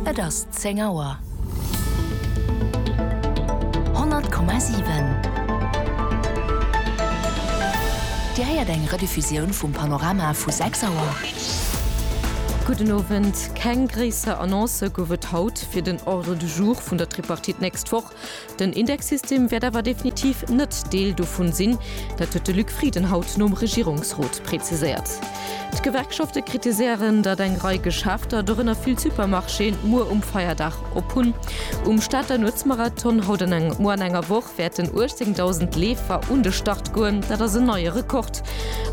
Et ass 10 Auer. 100,7 Dir héiert eng Rediffusioun vum Panorama vu 6 Auer. Gudden Owend. Keng gréisser Annoncë gouf et haut fir den Ordre du jour vun der Tripartite nächst Woch. Den Indexsystem wäert awer definitiv net Deel dovun sinn. Dat huet de Luc Frieden haut nom Regierungsrot preziséiert. D'Gewerkschafte kritiséieren, datt eng Rei Geschäfter, dorënner vill Supermarchéen, muer um Feierdag op hunn. Um Stater Nuetsmarathon haut an engem Moer an enger Woch wäerten 18.000 Leefer un de Start goen. Dat ass en neie Rekord.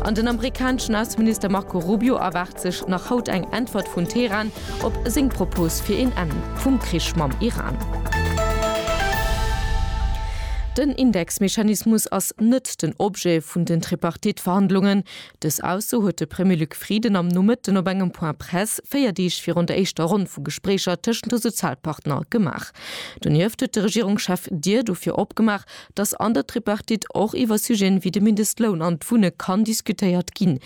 An den amerikaneschen Ausseminister Marco Rubio erwaart sech nach haut eng Äntwert vun Teheran, Op seng Propos fir een Enn vum Krich mam Iran. Den Indexmechanismus ass net den Objet vun den Tripartite-Verhandlungen. Dës Ausso huet de Premier Luc Frieden am Nomëtten op engem Point presse, véier Deeg virun der éischter Ronn vu Gespréicher tëschent de Sozialpartner, gemaach. Donieft huet de Regierungschef d'Dier dofir opgemaach, dass an der Tripartite och iwwer Sujeten wéi de Mindestloun an d'Wunne kann diskutéiert ginn.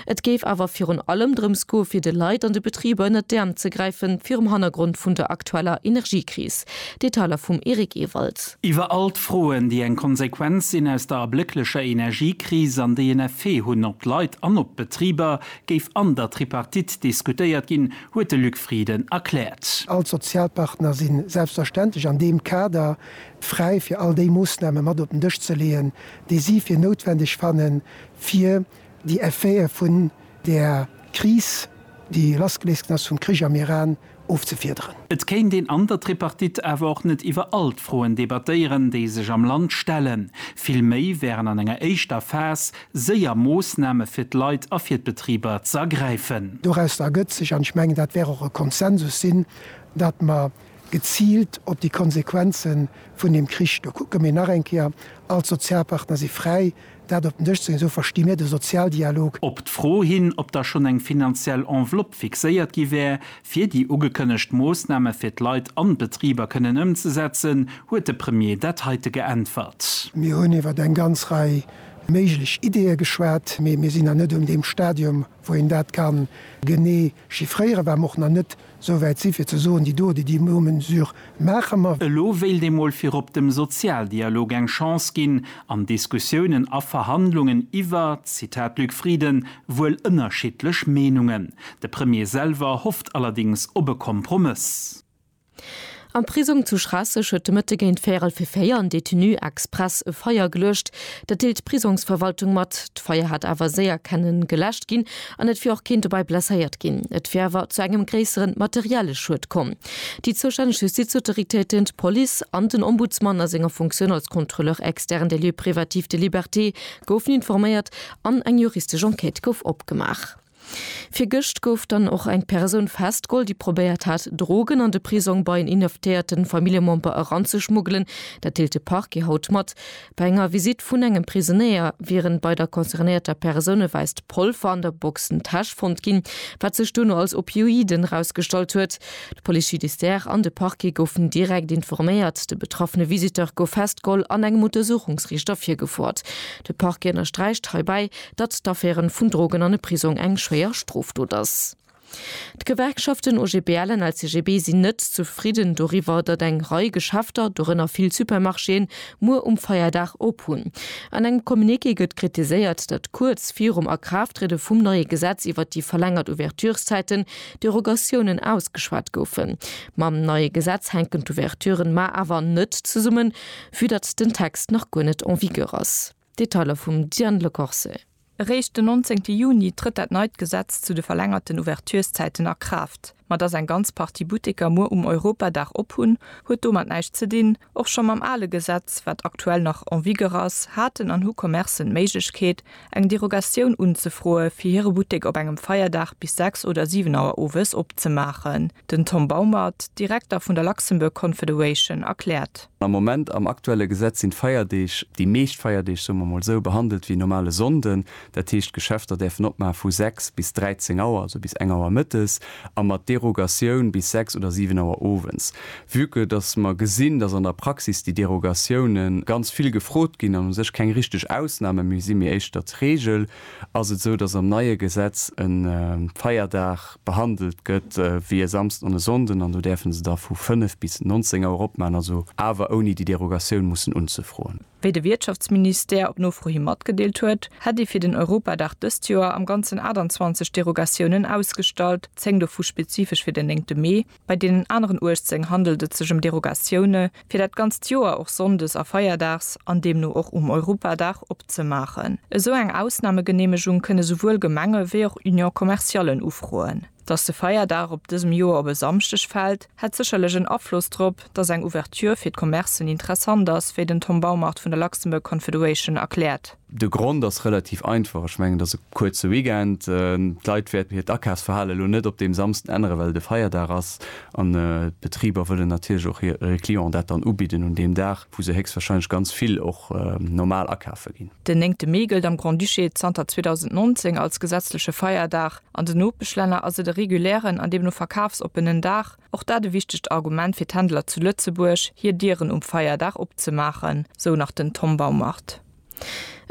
Et géif awer virun allem drëms goe fir de Leit an de Betriber ënnert d'Äerm ze gräife virum Hannergrond vun der aktueller Energiekris. Detailer vum Eric Ewald. Iwwer all d'Froen, déi eng Konsequenz sinn aus der ablécklecher Energiekris an déi en Effet hunn op d'Leit an op d'Betriber, géif an der Tripartite diskutéiert ginn, huet de Luc Frieden erkläert. All d'Sozialpartner si selbstverständlech an deem Kader fräi fir all déi Moossname mat op den Dësch ze leeën, déi si fir noutwendeg fannen, fir déi Effete vun där Kris, déi lassgeléist ginn ass vum Krich am Iran, ofzefiederen. Et kéint een an der Tripartite awer och net iwwer all d'Froen debattéieren, déi sech am Land stellen. Vill méi wären an enger éischter Phas séier Moossname fir d'Leit a fir d'Betriber ze ergräifen. Dorausser ergëtt sech, an ech mengen, dat wär och e Konsensus sinn, datt mer geziilt op déi Konsequenze vun deem Krich. Do kucke mir nach eng Kéier, all d'Sozialpartner si fräi, dat op den Dësch ze leeën, esou versti mir de Sozialdialog. Op d'Fro hin, ob da schonn eng finanziell Enveloppe fixéiert gi wär, fir déi ugekënnegt Moossname fir d'Leit an d'Betriber kënnen ëmzesetzen, huet de Premier dat heite geäntwert. Mir hunn iwwer eng ganz Rei méiglech Ideeë geschwat, mee mir sinn nach net un deem Stadium, wou een dat ka genee Chiffréiere war mer och nach net esou wäit si fir ze soen, déi do, déi déi no Mesure maache mer. Elo wéilt ee mol virop dem Sozialdialog eng Chance ginn an Diskussiounen a Verhandlungen iwwer, Zitat Luc Frieden, wuel ënnerschiddlech Meenungen. De Premier selwer hofft allerdings op e Kompromëss. Am Prisong zu Schraasseg huet de Mëtte géint véierel fir véier en Detenu express e Feier geluecht. Dat deelt d'Prisongsverwaltung mat. D'Feier hat awer séier kenne geläscht ginn an et wier och keen dobäi blesséiert ginn. Et wier awer zu engem gréisseren materielle Schued komm. Déi zoustänneg Justizautoritéiten, d'Police an den Ombudsman a senger Funktioun als Contrôleur externe des lieux privatifs de liberté goufen informéiert an eng juristesch Enquête gouf opgemaach. Virgëscht gouf dann och eng Persoun festgeholl, déi probéiert hat, Drogen an de Prisong bei en inhaftéierte Familljemember eranzeschmuggelen. Dat deelt de Parquet haut mat. Bei enger Visitt vun engem Prisonéier wieren bei der concernéierter Persoun e wäisst Polver an der Boxentäsch fonnt ginn, wat sech duerno als Opioiden erausgestallt huet. De Police judiciaire an de Parquet goufen direkt informéiert. De betraffene Visiteur gouf festgeholl an engem Untersuchungsriichter virgefoert. De Parquet ënnersträicht heibäi, datt d'Affäre vun Drogen an e Prisong eng schwéier Strofdot ass. D'Gewerkschaften OGBL an LCGB sinn net zefridden doriwwer, datt eng Rei Geschäfter, dorënner vill Supermarchéen, muer um Feierdag op hunn. An engem Communiqué gëtt kritiséiert, datt kuerz virum Akraafttriede vum neie Gesetz iwwert déi verlängert Ouvertureszäiten Derogatiounen ausgeschwat goufen. Mam neie Gesetz hänken d'Ouverturen mar awer net zesummen, vü datt den Text nach guer net en vigueur ass. Detailer vum Diane Le Corse. Eréischt den 19 Juni trëtt dat neit Gesetz zu de verlängerten Ouverturszäiten a Kraaft. Ma datt eng ganz Partie Butteker muer um Europadag op hunn, huet domat näischt ze dinn. Och scho mam ale Gesetz, wat aktuell nach en vigueur ass, haten an hu Commercen d'Méiglechkeet, eng Derogatioun unzefroe fir hire Buttek op engem Feierdag bis 6 oder 7 Auer owes opzemaachen. Den Tom Baumert, Direkter vun der Luxembourg Confederation, erkläert. Am Moment, am aktuelle Gesetz, sinn d'Feierdeeg, déi meescht Feierdeeg, soe mer emol esou, behandelt wéi normale Sonnden. Dat heescht, d'Geschäfter däerfen opmaach vu 6 bis 13 Auer, also bis eng Auer mëttes, a mat Derogatioun bis 6 oder 7 Auer owens. Vue que dass mer gesinn, dass an der Praxis déi Derogatioune ganz vill gefrot ginn an u sech keng richteg Ausname méi sinn, mee éischter d'Regel, Ass et esou, dass am neie Gesetz e Feierdag behandelt gëtt wéi e Samsden an e Sonnden, an do däerfe se da vu 5 bis 19 Auer opmaachen, also awer ouni déi Derogatioun mussen unzefroen? Wéi de Wiertschaftsministère op Nofro hi matgedeelt huet, hätt ee fir den Europadag dëst Joer am Ganzen 28 Derogatiounen ausgestallt, 10 dovu spezifesch fir den 9 Mee. Bei deenen aneren 18 handelt et sech ëm Derogatioune fir dat ganzt Joer och sonndes a feierdags, an deemno och um Europadag, opzemaachen. Esou eng Ausnamegeneemegung kënne souwuel Gemenge wéi och Union commerciallen ufroen. Datt de Feierdag op dësem Joer op e Samschdeg fält, hätt sécherlech en Afloss drop, datt eng Ouverture fir d'Commercen interessant ass, wéi den Tom Baumart vun der Luxembourg Confederation erkläert. De Grond ass relativ einfach, ech mengen et ass e kuerze Weekend. D'Leit wäerten hiert Akafsverhale lo net op deem Samsden änneren, well et e Feierdag ass an d'Betriber wëllen natierlech och hire Clienten dat dann ubidden un deem Dag, wou se héchstwahrscheinlech ganz vill och normal akafe ginn. Den néngte Mee gëllt am Grand-Duché zanter 2019 als gesetzleche Feierdag. An den Nopeschlänner ass et e regulären an deemno verkafsoppenen Dag. Och dat e wichtegt Argument fir d'Händler zu Lëtzebuerg, hir Dieren um Feierdag opzemaachen, sou nach den Tom Baumart.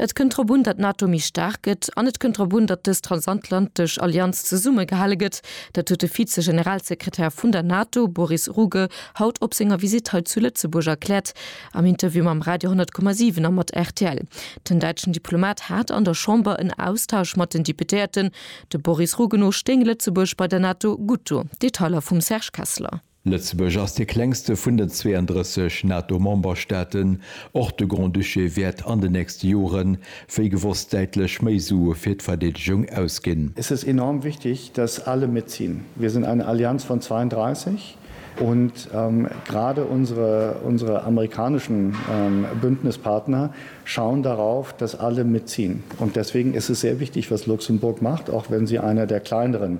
Et kënnt drop un, datt d'NATO méi staark gëtt an et kënnt drop un, datt dës transatlantesch Allianz zesummegehale gëtt. Dat huet de Vize-Generalsekretär vun der NATO, Boris Ruge, haut op senger Visitt hei zu Lëtzebuerg erkläert am Interview mam Radio 10,7 a mat rtl. Den däitschen Diplomat hat an der Chamber en Austausch mat den Deputéierten. De Boris Ruge no stéing Lëtzebuerg bei der NATO gutt do. Detailer vum Serge Kessler. Lëtzebuerg ass dee klengste vun den 32 NATO-Memberstaaten. Och de Grand-Duché wäert an den nächste Jore wéi gewosst däitlech méi Sue fir d'Verdeedegung ausginn. Es ist enorm wichtig, dass alle mitziehen. Wir sind eine Allianz von 32 und gerade unsere, unsere amerikanischen Bündnispartner schauen darauf, dass alle mitziehen. Und deswegen ist es sehr wichtig, was Luxemburg macht, auch wenn sie einer der kleineren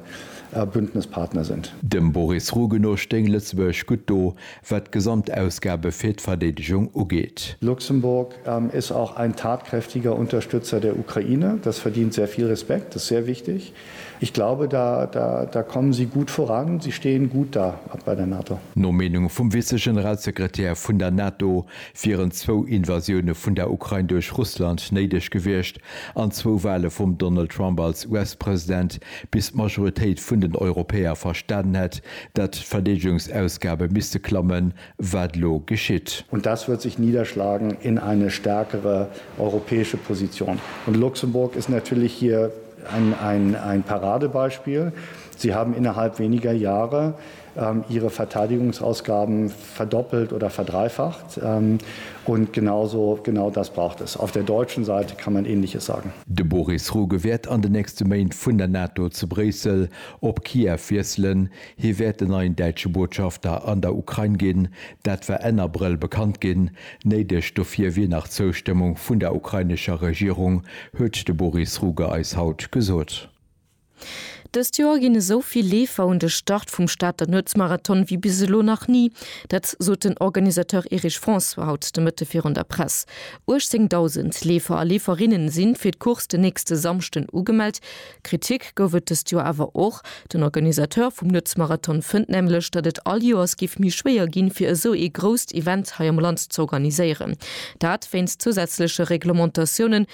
a Bündnispartner sind. Dem Boris Ruge no stéing Lëtzebuerg gutt do, wat d'Gesamtausgabe fir d'Verdeedegung ugeet. Luxemburg ist auch ein tatkräftiger Unterstützer der Ukraine. Das verdient sehr viel Respekt, das ist sehr wichtig. Ich glaube, da, da, da kommen Sie gut voran, Sie stehen gut da bei der NATO. No Meenung vum Vize-Generalsekretär vun der NATO wieren zwou Invasioune vun der Ukrain duerch Russland néideg gewiescht, An zwou Wale vum Donald Trump als US-President, bis d'Majoritéit vun den Europäer verstanen hätt, datt d'Verdeedegungsausgabe misste klammen, wat elo geschitt. Und das wird sich niederschlagen in eine stärkere europäische Position. Und Luxemburg ist natürlich hier ein Paradebeispiel. Sie haben innerhalb weniger Jahre ihre Verteidigungsausgaben verdoppelt oder verdreifacht und genau so, genau das braucht es. Auf der deutschen Seite kann man Ähnliches sagen. De Boris Ruge wäert an de nächste Méint vun der NATO zu Bréissel op Kiew wiesselen. Hie wäert den neien däitsche Botschafter an der Ukrain ginn. Dat war Enn Abrëll bekannt ginn. Néideg dofir wier nach d'Zoustëmmung vun der ukrainescher Regierung, huet de Boris Ruge eis haut gesot. Dëst Joer ginn esou vill Leefer un de Start vum Stater Nuetsmarathon wéi bis elo nach ni. Dat sot den Organisateur Erich François haut de Mëtte virun der Press. 18.000 Leefer a Leeferinne si fir d'Course den nächste Samschden ugemellt. Kritik gouf et dëst Joer awer och. Den Organisateur vum Nuetsmarathon fënnt nämlech, datt et all Joers géif méi schwéier ginn, fir esou ee grousst Event hei am Land z'organiséieren. Dat wéinst zousätzleche Reglementatiounen,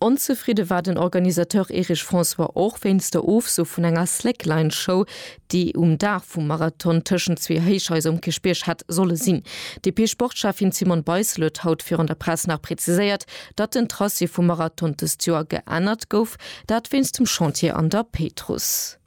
Onzefridde war den Organisateur Erich François och wéinst der Ofso vun enger Slackline-Show, déi um Dag vum Marathon tëschent zwee Héichhaiser um Kierchbierg hätt solle sinn. D'DP-Sportschäffin Simone Beissel huet haut virun der Press nach preziséiert, datt den Tracé vum Marathon dëst Joer geännert gouf, dat wéinst dem Chantier an der Péitruss.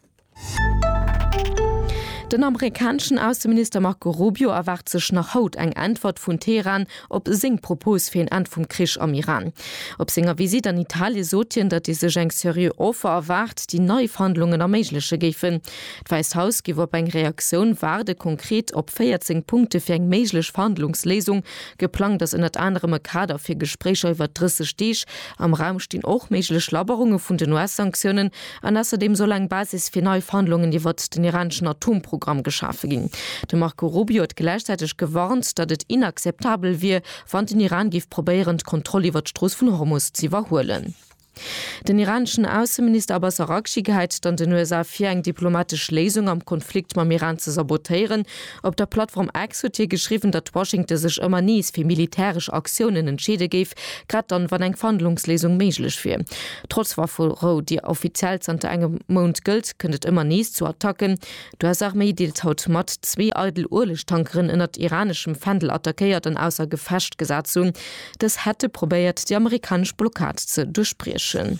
Den amerikaneschen Ausseminister Marco Rubio erwaart sech nach haut eng Äntwert vun Teheran op seng Propos fir een Enn vum Krich am Iran. Op senger Visitt an Italie sot hien, datt ee sech eng seriö Offer erwaart, déi nei Verhandlungen erméigleche géifen. D'Wäisst Haus géif op eng Reaktioun waarden. Konkret op 14 Punkte fir eng méiglech Verhandlungsléisung. Geplangt ass ënnert anerem e Kader fir Gespréicher iwwer 30 Deeg. Am Raum stinn och méiglech Labberunge vun den US-Sanktiounen. An ausserdeem soll eng Basis fir nei Verhandlungen iwwert den iraneschen Atomprogramm geschafe ginn. De Marco Rubio huet gläichzäiteg gewarnt, datt et inakzeptabel wier, wann den Iran géif probéieren, d'Kontroll iwwert d'Strooss vun Hormus ze iwwerhuelen. Den iraneschen Ausseminister Abbas Araghchi geheit et an den USA vir, eng diplomatesch Léisung am Konflikt mam Iran ze sabotéieren, Op der Plattform X huet hie geschriwwen, datt Washington sech ëmmer nees fir militäresch Aktiounen entscheede géif, grad dann, wann eng Verhandlungsléisung méiglech wier. Trotz Wafferou, déi offiziell zanter engem Mount gëllt, kënnt et ëmmer nees zu Attacken. D'US-Arméi deelt haut mat, zwee eidel Uelegtankeren ënnert iraneschem Fändel attackéiert an ausser Gefecht gesat ze hunn. Dës hätte probéiert, déi amerikanesch Blockad ze duerchbriechen.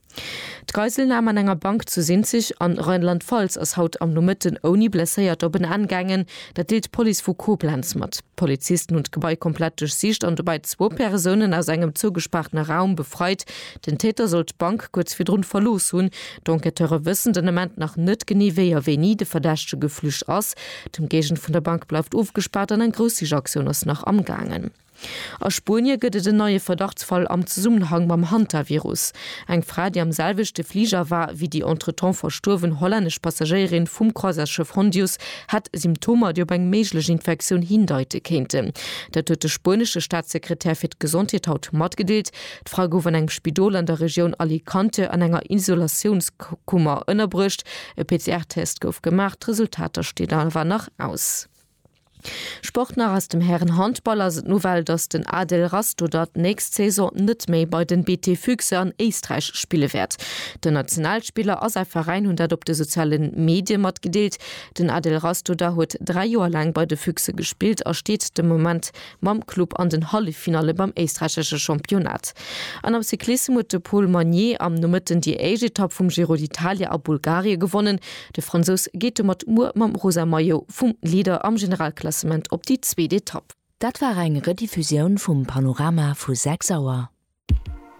D'Geiselnam an enger Bank zu Sinzig an Rheinland-Pfalz ass haut am Nomëtten ouni Blesséiert op en Enn gaangen. Dat deelt d'Police vu Koblenz mat. D'Polizisten hunn d'Gebai komplett duerchsicht an dobäi zwou Persounen aus engem zougespaartene Raum befreit. Den Täter soll d'Bank kuerz virdrun verlooss hunn. D'Enquêteure wëssen den Ament nach net genee wéi a wéini de Verdächtege geflücht ass. D'Ëmgéigend vun der Bank bleift ofgespaart an eng Groussichaktioun ass nach am gaangen. A Spuenie gëtt et en neie Verdachtsfall am Zesummenhang mam Hantavirus. Eng Fra, déi am selwechte Fliger war wéi déi entretemps verstuerwen hollännesch Passagéierin vum Croisièresschëff Hondius, hätt Symptomer, déi op eng méiglech Infektioun hindeite kéinten. Dat huet de spuenesche Staatssekretär fir d'Gesondheet haut matgedeelt. D'Fra gouf an engem Spidol an der Regioun Alicante an enger Isolatiounskummer ënnerbruecht. E PCR-Test gouf gemaach, d'Resultater stinn awer nach aus. Sport nach Aus dem Hären-Handball ass et d'Nouvelle, dass den Adel Rastoder d'nächst Saison net méi bei den BT Füchse an Éisträich spille wäert. Den Nationalspiller a säi Veräin hunn dat op de soziale Medie matgedeelt. Den Adel Rastoder huet dräi Joer laang bei de Füchse gespillt a steet de Moment mam Club an den Halleffinalle beim éisträichesche Championnat. An am Cyclissem huet de Paul Magnier am Nomëtten déi éischt Etapp vum Giro d'Italia a Bulgarie gewonnen. De Fransous geet domat muer mam rosa Maillot vum Leader am Generalklassement op déi zweet Etapp. Dat war eng Rediffusioun vum Panorama vu 6 Auer.